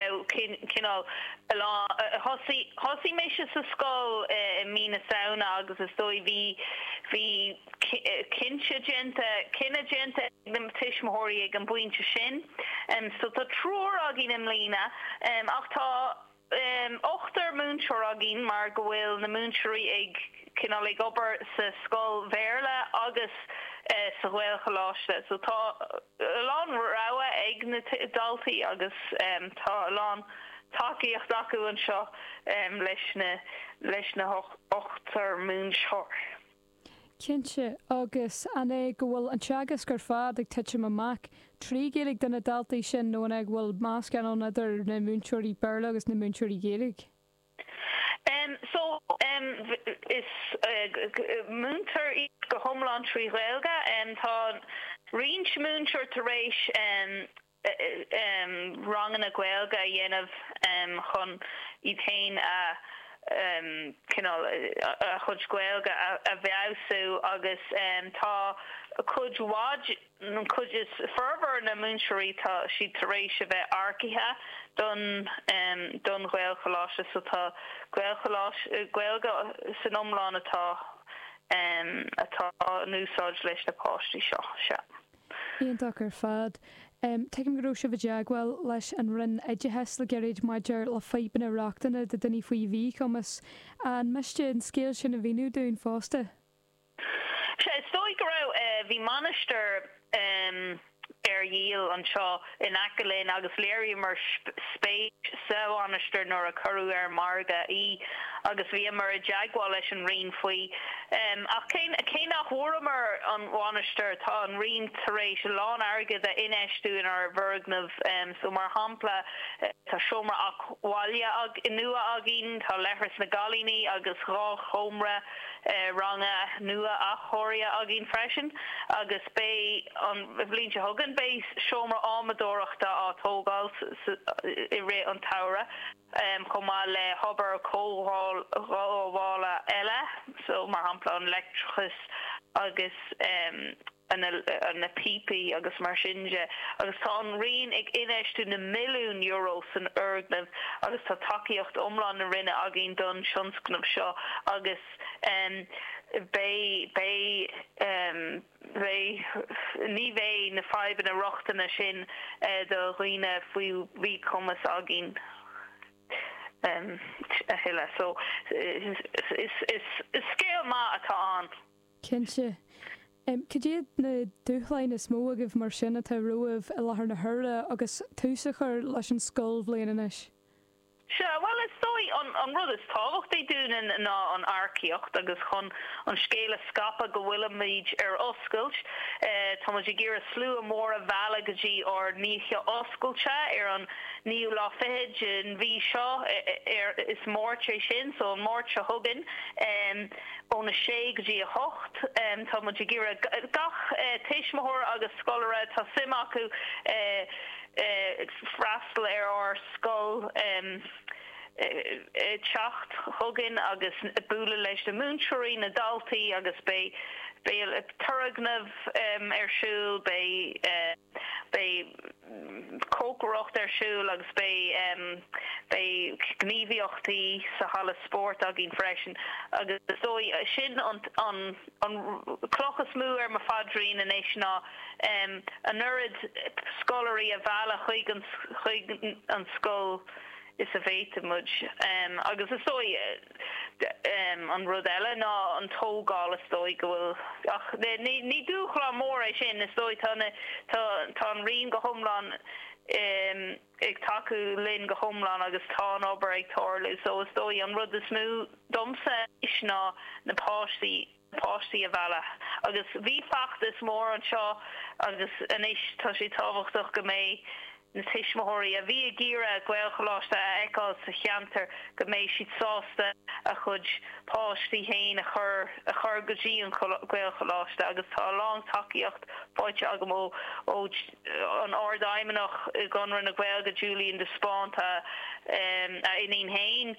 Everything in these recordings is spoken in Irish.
cineál thosaigh mise sa scoil i mí na Samhna agus is dóigh bhí cinnte déanta cinneadh déanta ag na tuismitheoirí ag an bpointe sin so tá triúr againn i mbliana ach tá ochtar múinteoir againn mar go bhfuil na múinteoirí ag cineál ag obair sa scoil Bhéarla agus sa Ghaelcholáiste so tá a lán rogha ag na daltaí agus tá a lán tacaíocht acu anseo leis na ochtar múinteoir. Cinnte, agus an é go bhfuil an teagasc ar fad ag titim amach trí Ghaeilge do na daltaí sin nó an é go bhfuil meascán ann idir na múinteoirí Béarla agus na múinteoirí Gaeilge? So, múintear iad go hiomlán trí Ghaeilge. Tá roinnt múinteoir tar éis ranganna Gaeilge a dhéanamh chun iad féin a, cineál, a chuid Gaeilge a bhfeabhsú agus tá cuid mhaith. An chuid is formhór de na múinteoirí tá siad tar éis a bheith earcaithe don don Ghaelcholáiste so tá Gaelcholáiste, Gaeilge san iomlán atá atá in úsáid leis na páistí seo, sea. Iontach ar fad. Tuigim go raibh sibh i dteagmháil leis an Roinn Oideachais le gairid maidir le fadhbanna rochtana do dhaoine faoi mhíchumas. An miste an scéal sin a mhíniú dúinn fosta? Sea, is dóigh go raibh. Bhí mainistir ar dhíol anseo in aice linn agus léiríomar spéis sa mhainistir nuair a cuireadh ar an margadh í agus bhíomar i dteagmháil leis an Roinn faoi. Ach cé nach bhfuaireamar an mhainistir, tá an Roinn tar éis a lán airgid a infheistiú inár bhfoirgneamh so. Mar shampla, tá seomra eacnamaíocht bhaile nua againn, tá leithreas na gcailíní agus dhá sheomra. ranga nua athchóirithe againn freisin agus beidh an bhliain seo chugainn beidh seomra adhmadóireachta á tógáil i rith an tsamhraidh chomh maith le hobair chothabhála eile so mar shampla an leictreachas agus na píopaí agus mar sin de agus tá an Roinn ag infheistiú na milliún Euro san fhoirgneamh agus tá tacaíocht iomlán na Roinne againn don tionscnamh seo agus beidh beidh beidh ní bheidh na fadhbanna rochtana sin do dhaoine faoi mhíchumas againn a thuilleadh. So is scéal maith atá ann. Cinnte. Cad iad na dúshláin is mó agaibh mar sin atá romhaibh i láthair na huaire agus tús á chur leis an scoilbhliain anois? Sea, bhuel is dóigh an rud is tábhachtaí dúinn ná an earcaíocht agus chun an scéal a scaipeadh go bhfuilimid ar oscailt. Táimid ag iarraidh slua mór a mhealladh go dtí ár n-oíche oscailte ar an naoú lá fichead den mhí seo, is Máirt é sin, so an Máirt seo chugainn. ón 6 go dtí 8. Tá muid ag iarraidh gach tuismitheoir agus scoláire atá suim acu freastal ar ár scoil teacht chugainn agus bualadh leis na múinteoirí, na daltaí agus beidh turgnamh ar siúl, beidh. Beidh cócaireacht ar siúl agus beidh beidh gníomhaíochtaí sa halla spóirt againn freisin agus is dóigh sin an an an chloch is mó ar mo phaidrín anois ná an oiread scoláirí a mhealladh chuig an chuig an scoil is a bhféadfadh muid. Agus is dóigh, an rud eile ná an tógáil, is dóigh go bhfuil, ach ní dúshlán mór é sin, is dóigh, tá an Roinn go hiomlán ag tacú linn go hiomlán agus tá an obair ag tarlú so is dóigh an rud is mó domsa anois ná na páistí. páistí a mhealladh. Agus bhí feachtas mór anseo agus anois tá sé tábhachtach go mbeidh na tuismitheoirí a bhí ag iarraidh Gaelcholáiste a fheiceáil sa cheantar go mbeidh siad sásta a gcuid páistí féin a chur a chur go dtí an Gaelcholáiste agus tá a lán tacaíocht faighte agam ó an Ardfheidhmeannach i gConradh na Gaeilge, Julian de Spáinn, tá a iníon féin,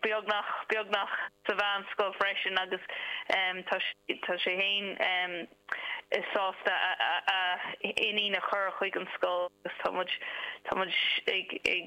beagnach, beagnach sa mheánscoil freisin agus tá sé féin sásta a iníon a chur chuig an scoil agus tá muid, tá muid ag.